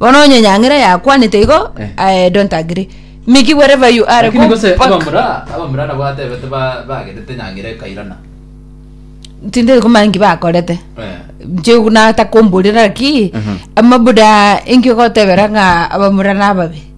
Bono onye enyang'era yakwanete igo, Eh. I don't agree. Mickey, wherever you are, Lakini go gose back. abamura abamura nabo atebete ba- bagenete nyang'era ekairana Tindiri kumanya nki bakorete. Eh. Nchigwa natakomborera ki, Mhm. amabuda enki ogotebera ng'a abamura nababe.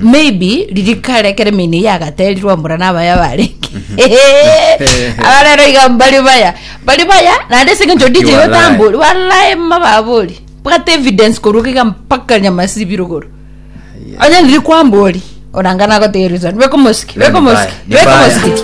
maybe ririkare ekero emeino eyio yagaterirwe mbora nabaya barenge aba rero iga mbari baya bari baya naende ase eng'encho dj Walai. otambori walai mababori bwate evidence korwa iga mpaka nyamasibiri igoro onye riria kwambori oranga nagotegereri sana beka omosiki beka omosiki Ni baya. beka omosiki